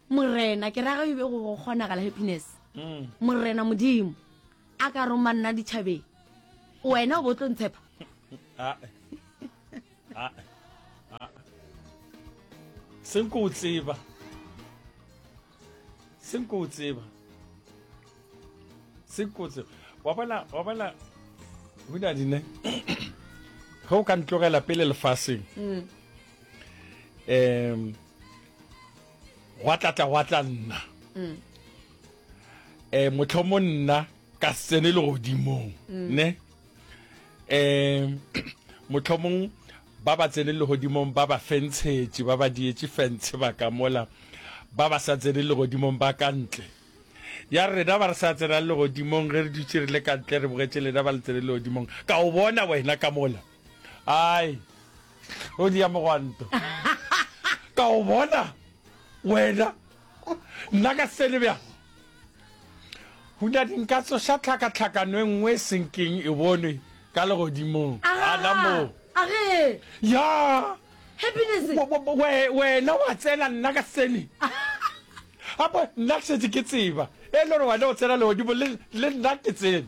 morena ke raga ebe go go kgonagala happiness mm. morena modimo a ka roma nna ditšhabeng wena o bo tlo ntshepa ah, ah, ah. senko o tseba senko o tseba senko o tseba wa bona wa bona o na dine ge o ka ntlogela pele lefaseng mm. um gwa tlatla gwa tla nna um motlhomo nna ka sene le godimong mm. ne um motlhomong ba ba tsene le godimong ba ba fentshetše ba ba dietse fentshe ba ka mola ba ba sa tsene le godimong ba ka ntle ya rena ba re sa tsenang le godimong ge re dutse re le ka ntle re bogetše lena ba le tsene le godimong ka o bona wena ka mola Ai, o dia mogwanto. Ka o bona, wena, nna ka sene bja. Huna dinka tsoša tlhakatlhakano e nngwe e senkeng e bonwe ka legodimong. Gana moo. Age. Ya. Happiness. Wena wa tsena nna ka sene. Apo, nna ke setse ke tseba. E le gore wena o tsena legodimo le nna ke tsena.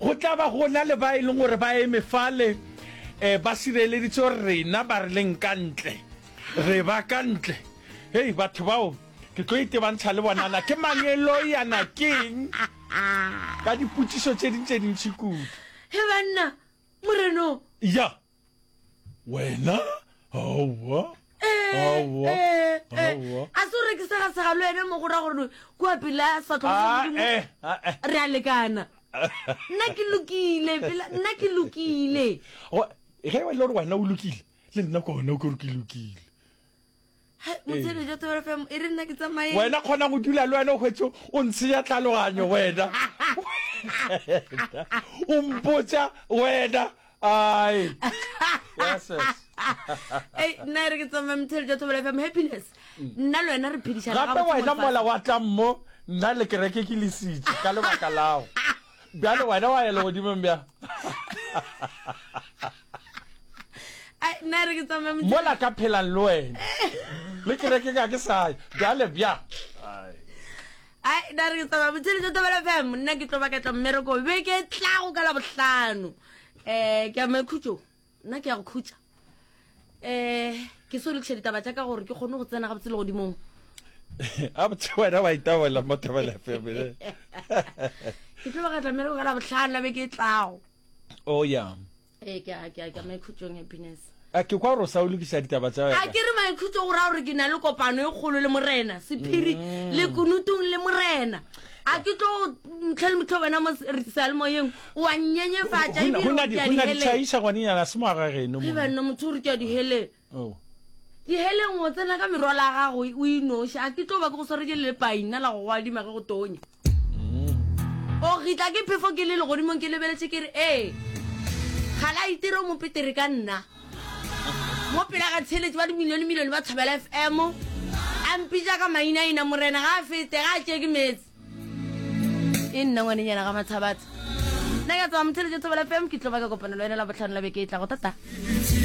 Go tla ba go na le ba e leng gore ba eme fale ba sireleditse gore rena ba re leng ka ntle, re ba ka ntle. Hei, batho bao ke tlo itebantsha le bona. Na ke mang e lo ya na keng ka dipotšišo tše ding tše dintši kudu. He banna, Moreno! Ya. wena aowa aowa aowa a se o rekisa ga segalo ene mo go ra gore kua pela Ah, sefatlhogodimo eh, ah, eh. re a lekana nna ke lokile pela nna ke lokile Go- ge e le gore wena o lokile le nna kone o kere ke lokile wena kgona go dula le wena hwetso o ntsheya tlhaloganyo wena o mpotsa wena ai nna re ke tsamaya mthele ja thobela fm happiness mm. nna le wena re phedišana gape wena mola wa tlang mo nna le kereke ke lesitse ka lebaka lago Bjale wena wa ya legodimong bja. Ai nna re ke tsamaya mo. Mola ka phelang le wena. Le kereke ka ke sa bjale bja. Ai nna re ke tsamaya motshele tsa tabela fm nna ke tlo ba ka tla mmereko beke tlago ka la bohlano. Eh ke a makhutšong. nna ke ya go khutša um ke so lokiša ditaba tša ka gore ke kgone go tsena gabotse le godimong a botse wena wa itabolela mo thabela family ke tlo ga tlamele go ka la botlhano la be ke tlago o oh, ya ee ke a ke a ke maikhutšong happiness a ke kwa gore o sa o lokiša ditaba tsa wena a ke re maikhutso go raya gore ke na le kopano e kgolo le morena sephiri mm. le kunutong le morena a ke tlo ntlhele motlho wena mo seyalemoyeng O a nnyenyefatša Go na- ebile go o na re di- ke a go na diheleng. ditšhaiša ngwanenyana a se mo aga geno Ge monna. banna motho o re ke a diheleng. Oh. Diheleng o tsena ka merwalo ya gago o e noši. A ke tlo ba ke go sware ke lepaina la go go adima ge go tonya. O gitla ke phefo ke le legodimong ke lebeletše ke re ee. Ga la itira o mo petere ka nna. Mo pela ga tsheletše ba dimilione milione ba Thobela FM. A mpitša ka mainaina morena ga a fete ga a tšee ke meetse. e nna ngwanenyana ga mathabatsa nna ka tswa motheletse thobela fm ke tlo ba ka kopana le wena la botlhano la beke e tlago tata